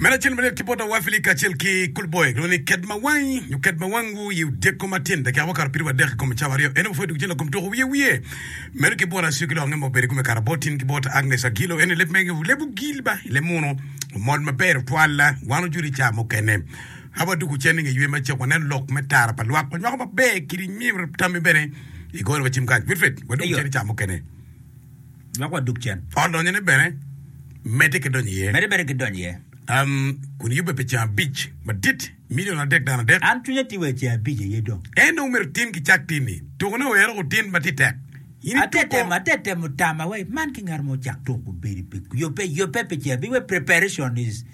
Meno acel malet ki bot Awafili kacel ki Kulboye kilwongo ni ked ma wangi nyo ked ma wang wu i odyeko matin dakika ma okato pidowa adek i kom cawa aryo. En aye ma pwod dwogo cen lakom tuko wiye wiye. Meno ki bot Acio ki lok ange ma obedo i kome kare bot in ki bot Agnes Agilo en aye leb mege leb ogil ba i leb muno omol maber otwal wan ojudo i ca mukene. Haba dwogo cen i nge ywe macek waneno lok me tara pa lwak wanywako maber kiri myero tammi bene i gore wacim kany. Wilfred wadwogo Eyo. cen i ca mukene. Dok wadug cen. Ot lonyone bene medde ki donyo iye. Medde bene ki donyo iye. Kun eyubbe pi ceng abic madit, milion adek dano adek. An cwinya ti wai ceng abic aye dong. En dong myero tin ki cak tinni. Tukone wek eruku tin ma ti tek. In ituko. Ate temo, ate temo tama wai man ki ngat mo ocak tuk obedi pi yubbe, yubbe pi ceng abic wek preparation is.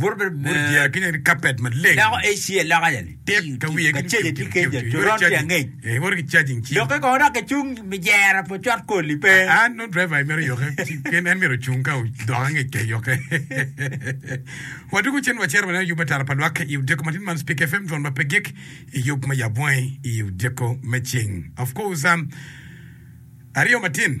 Bot jeya ki nyen kapet maleng. Dako Asia loka ja ni tik ka wiye ki caja tye keca coron tye angec iwoto ki cajing ci loke kono dok icung mi jera po cot koli pe an nongo driver i mero yoke pien en myero ocung ka odok angec ke yoke wadwogo cen wacero waneno yub atara pa lwak i odyeko matin man Spik FM dwon ma pe gik i yub ma yab wangi i odyeko me cing of course um, aryo matin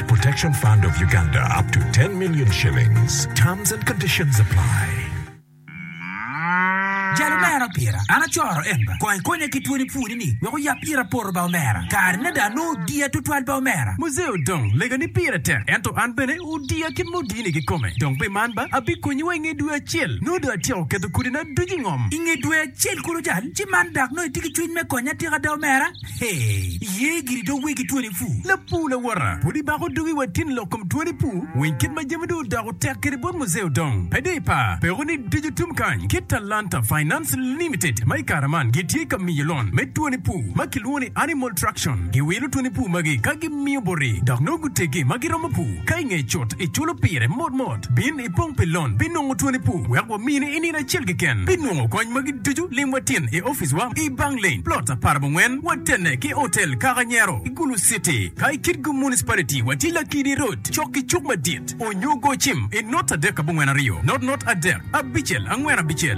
Protection Fund of Uganda up to 10 million shillings. Terms and conditions apply. Jalo me an opira, an acoro en ba. Kong ikonya ki twoni pwoni ni wek oyab ira poto ba omera. Kare na dong anongo odiya tutwal ba omera. Muzee Odong, Lega ni pire tek ento an bene odiya kit ma odini kikome. Dong pi man ba abikonyi wa inge dwe acel. Nongo dong atyeko keto kodi na ducu ingom. Inge dwe acel kulu jal ci man dak nongo itye ki cwiny me konya atika ada omera? Hee, iye giri dong wegi twoni pu? Lapur lawota, pud ibako dugi wa tin lok kom twoni pu? Weny kit ma jami dong odoko tek kede bot Muzee Odong, pe dong ipar peko ni ducu tum kany ki Talanta Finance Limited ma i kare man gitye ka miyo lon me twoni pu ma kilwongo ni Animal Traction. Giwilo twoni pu magi ka gimiyo boti dok nongo guteggi ma giromo pu ka i ngeye cut iculo pire mot mot. Bin. ipong pi lon pi nongo twoni pu wek wamini i nino acel keken pi nongo kony magi ducu lim watin i office wa i bang lane plot apar abongwen watene ki hotel kaka nyero i gulu city ka i kitgo municipality wa tye lakidi road cok ki cuk madit onyo go cim i not adek abongwen aryo not not adek abicel angwen abicel.